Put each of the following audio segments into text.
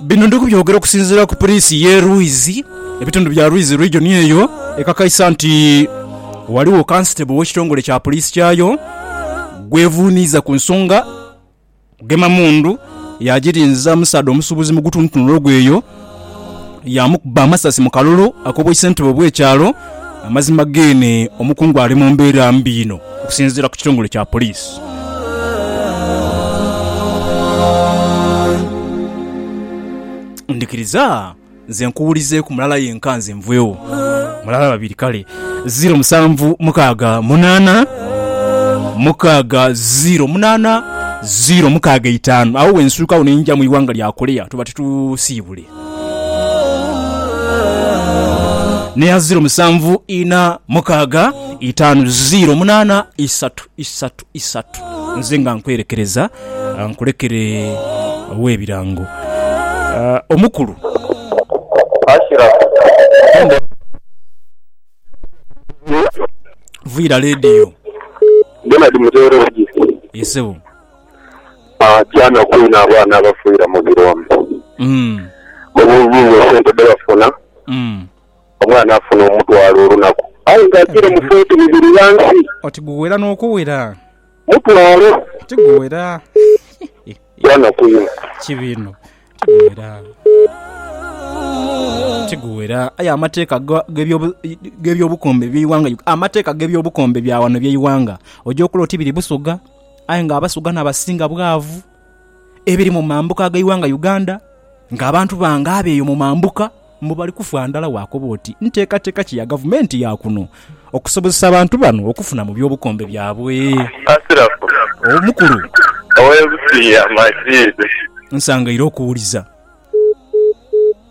Bino ndi kubyogera okusinziira ku Puliisi y'e Rwizi, ebitundu bya Rwizi Region eyo ekakaisa nti ghaligho Kansitebo w'ekitongole kya Puliisi kyayo gwevuuniiza ku nsonga kugema mundu yaagirinza omusaadha omusuubuzi mu gutuntunula ogw'eyo yaamukuba amasasi mu kalulu akoboise ntebe bw'ekyalo Amazima geene omukungu ali mu mbeera mbi inho okusinziira ku kitongole kya poliisi. Ndhikiriza nze nkuwulizeeku mulala yenka nze nveewo. Mulala babiri kale. Ziiro musanvu mukaaga munaana mukaaga ziiro munaana ziiro mukaaga eitaanu. Agho wensuukagho ne nja mu ighanga lya Korea tuba titusiibule. n'eya ziiro musanvu ina mukaaga itaanu ziiro munaana isatu isatu isatu. Nze nga nkwerekereza nkulekere ow'ebirango omukulu. Vuira leediyo. Ye ssebo. Aah kyanaku inho abaana abafiira mu birombe. Obuubi inho sente dhebafuna, omwana afuna omutwalo olunaku aye nga ajiire mu foote bibiri ghansi. Oti guwera n'okuwera. Mutwalo. Ti guwera. Kyanaku inho. Ki biino. Tiguwera. Tiguwera. Aye amateeka ga- g'ebyobu- g'ebyobukombe by'eighanga Ug- amateeka g'ebyobukombe bya wano eby'eighanga oja okula oti biri Busoga aye nga Abasoga n'abasinga bwavu. Ebiri mu mambuka ag'eighanga Uganda ng'abantu bange abo eyo mu mambuka Mbu bali kufa ndhala waakoba oti nteekateeka ki ya Gavumenti ya kuno okusobozesa abantu bano okufuna mu by'obukombe byabwe? Asirafu, omukulu ow'e Busiiya Majiid. Nsangaire okuwuliza.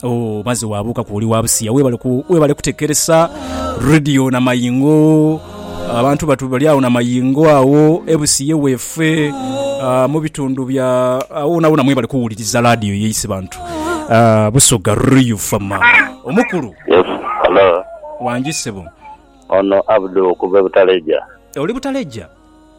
Ooh maze waabuukaku oli wa Busiiya, weebale kutekeresa Radio Namaingo. Abantu batu bali agho na mayingo agho e Busiye weefe, mu bitundu bya agho wonawona mwebali kuwuliriza laadiyo yaise bantu. Busoga Riu FM. Omukulu. Yes, hello. Wangi ssebo. Ono Abdu okuva e Butaleja. Oli Butaleja?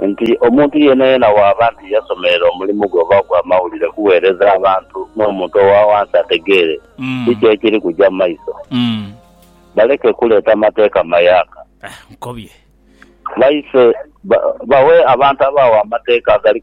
nti omuntu yeenayeena bw'aba nti yasomerera omulimu gwe oba ogw'amawulire kuweereza abantu n'omuntu owa wansi ategeere kiki ekiri kuja mu maiso, baleke kuleeta mateeka mayaaka. Baife bawe abantu abagho amateeka agali.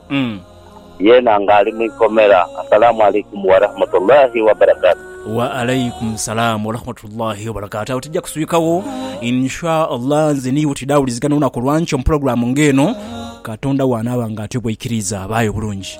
Yeena nga ali mu ikomera. Asalaamu Alaikum Warahmatullahi Wabarakatuh. Wa Alaikum Salaam Warahmatullahi Wabarakatuh. Agho tija kuswikagho in sha Allah. Nze n'iwe twidhaawulizigana olunaku olwankyo mu pulogulaamu ng'eno, Katonda bw'anaaba nga atyo bw'aikiriiza. Baayo bulungi.